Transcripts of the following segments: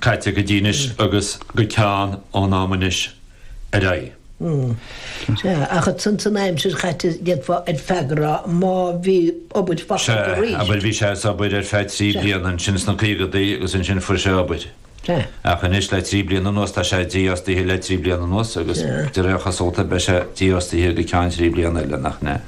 caite go dtí anois agus go ceann ón am anois ar aghaidh. Ach ansan san aimsir chaite, d'fhéadfá ar feadh a rá, má bhí. Abair focal de arís. Sea, abair, bhí sé as obair ar feadh trí bliana ansin sna caogadaí agus ansin fuair sé obair. Ach anois le trí bliana anuas tá sé dífhostaithe le trí bliana anuas agus de réir a chosúlta beidh sé dífhostaithe go ceann trí bliana eile, nach.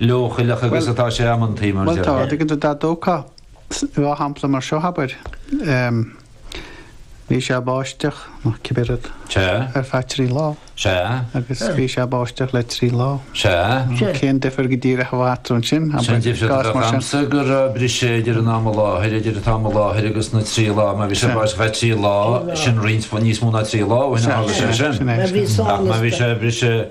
leochaileach agus atá sé amantaí, mar dhea. Bhuel, tá, dtuigeann tú, dá dtógfá dhá shampla mar seo, abair, bhí sé báisteach, nó cibé rud, ar feadh trí lá, agus bhí sé báisteach le trí lá, cén difear go díreach a bheadh eatarthu ansin, abair, i gcás mar sin? Sin difear, agamsa, go raibh briseadh idir an am i láthair, idir an t-am i láthair agus na trí lá, má bhí sé báisteach ar feadh trí lá, sin roinnt níos mó ná trí lá, bhí sé bris.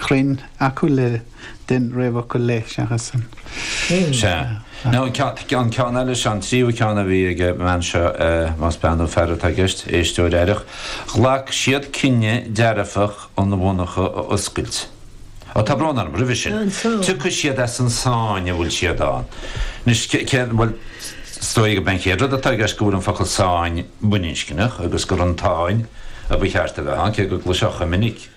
chruinn acu le don réamhfhocal le seachas an ceann. Sea. An ceann eile, sea, an tríú ceann a bhí ag an mbean seo, más bean nó fear atá i gceist, éisteoir aireach, ghlac siad cinneadh dearfach an mhonarcha a oscailt. Ó, tá brón orm, roimhe sin. Tiocfaidh siad as an sáinn a bhfuil siad ann. Anois, céard, bhuel, is dóigh gurb é an chéad rud atá i gceist go bhfuil an focal sáinn baininscneach agus gur as an tsáinn a ba cheart a bheith ann, cé go gcloisfeá chomh minic,